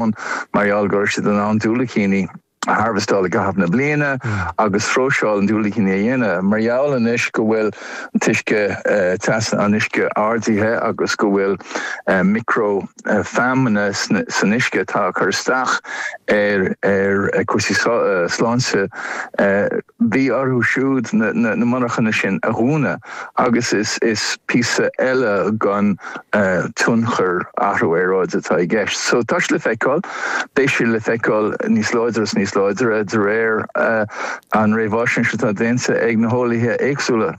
ann mar gheall go raibh siad in ann diúilicíní a harvestáil i gcaitheamh na bliana agus próiseáil an diúilicíní a dhéanamh. Mar gheall anois go bhfuil an t-uisce teas an uisce ardaithe agus go bhfuil micreafeamainne san uisce atá ag cur isteach ar cúrsaí sláinte, Bhí orthu siúd na monarchana sin a dhúnadh agus is píosa eile den tionchar athrú aeráide atá i gceist. So tá sé le feiceáil, beidh sé le feiceáil níos láidre is níos láidre de réir an réamhaisnéis atá déanta ag na heolaithe éagsúla.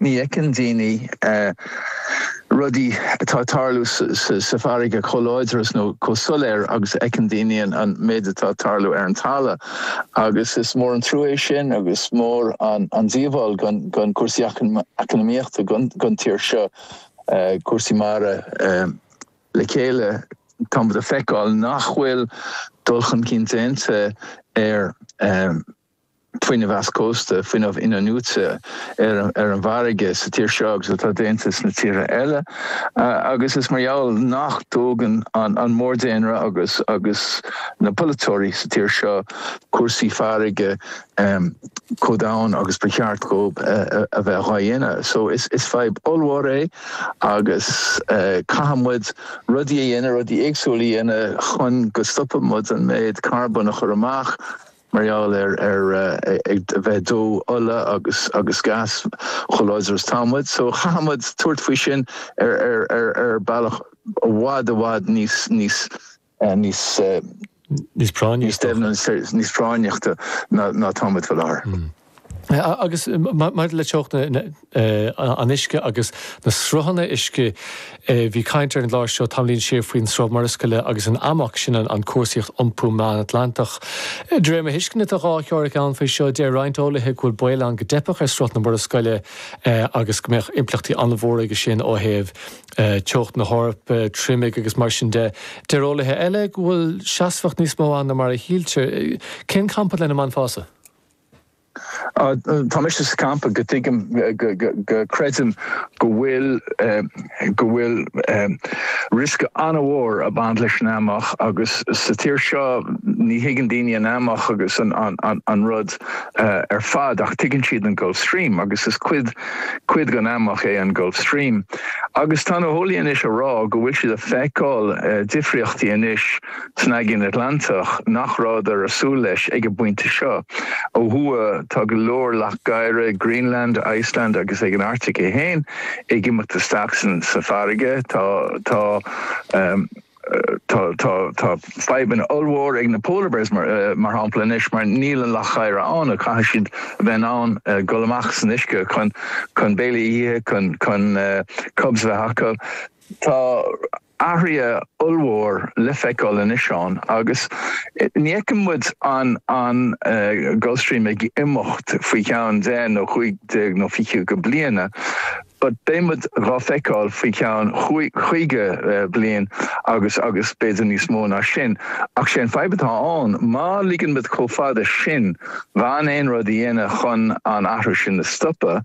Ní fheiceann daoine rudaí atá ag tarlú sa bhfarraige chomh láidir is nó chomh soiléir agus a fheiceann daoine an méid atá ag tarlú ar an talamh agus is mór an trua é sin agus mór an díobháil don chúrsaí eacnamaíochta don tír seo cúrsaí mara le chéile. Tá muid ag feiceáil nach bhfuil dul chun cinn déanta ar. fuinneamh eischósta, fuinneamh in-athnuaite ar an bhfarraige sa tír seo agus atá déanta sna tíortha eile agus is mar gheall nach dtógann an mórdhaonra agus agus na polaiteoirí sa tír seo cúrsaí farraige chomh domhain agus ba cheart dhóib a bheith dhá dhéanamh. So is fadhb ollmhór é agus caithfidh muid rudaí a dhéanamh, rudaí éagsúla a dhéanamh chun go stopfaidh muid an méid carbón a chur amach. mar gheall ar a bheith ag dó ola agus gas chomh láidir is tá muid, so chaithfidh muid tabhairt faoi sin ar bealach i bhfad i bhfad níos, níos, níos. níos práinne is dócha. níos deimhne, níos práinneachta ná tá muid faoi láthair. Agus maidir le teocht an uisce agus na sruthanna uisce, bhí caint ar an gclár seo tamaillín siar faoin Sruth Murascaille agus an AMOC, sin an cúrsaíocht iompú Meán-Atlantach. De réir mo thuisceana, tá dhá theoiric ann faoi seo, deir roinnt eolaithe go bhfuil baol ann go dteipfeadh ar Sruth na Murascaille agus go mbeadh impleachtaí an-mhór aige sin ó thaobh teocht na hEorpa, triomaigh agus mar sin de. Deir eolaithe eile go bhfuil seasmhacht níos mó ann ná mar a shíltear. Cén campa lena mbainfeása? Tá mise sa campa go dtuigim, go gcreidim go bhfuil, go bhfuil riosca an-mhór ag baint leis an AMOC, agus sa tír seo ní thuigeann daoine an AMOC agus an rud ar fad ach tuigeann siad an Gulf Stream agus is cuid, cuid den AMOC é an Gulf Stream. Agus tá na heolaithe anois ag rá go bhfuil siad ag feiceáil difríochtaí anois. san Aigéan Atlantach nach rabhadar a súil leis ag an bpointe seo. Ó thuaidh tá go leor leac oighre ag Greenland, Iceland agus ag an Arctic é féin ag imeacht isteach sa sa bhfarraige. Tá tá tá tá tá fadhbanna ollmhór ag na polar bears mar shampla anois mar níl an leac oighre ann agus caithfidh siad a bheith in ann gul amach san uisce chun chun béile a ithe chun chun cubs a bheith acu. Tá. athruithe ollmhór le feiceáil anois ann agus ní fheiceann muid an Gulf Stream ag imeacht faoi cheann deich nó chúig déag nó fiche go bliana but beidh muid dhá feiceáil faoi cheann caoga bliain agus agus b'fhéidir níos mó ná sin. Ach sé an fadhb atá ann, má ligeann muid chomh fada sin gan aon rud a dhéanamh chun an athrú sin a stopadh,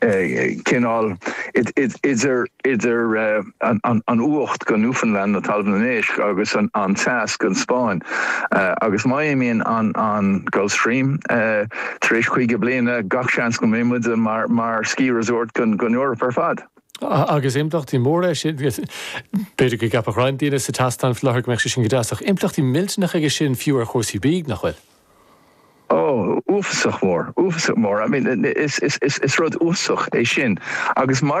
cineál idir idir an fhuacht go Newfoundland nó Talamh an Éisc agus an teas go an Spáinn, agus má imíonn an Gulf Stream tar éis caoga bliana, gach seans go mbeidh muid mar ski resort don Eoraip ar fad. Agus impleachtaí móra aige sin. B'fhéidir go gceapfadh roinnt daoine san éisteacht, sa láthair, go mbeadh sé sin go deas, ach impleachtaí millteanacha aige sin fiú ar chúrsaí bídh, nach bhfuil? Ó, uafasach mór, uafasach mór, I mean, is rud uafasach é sin agus mar a.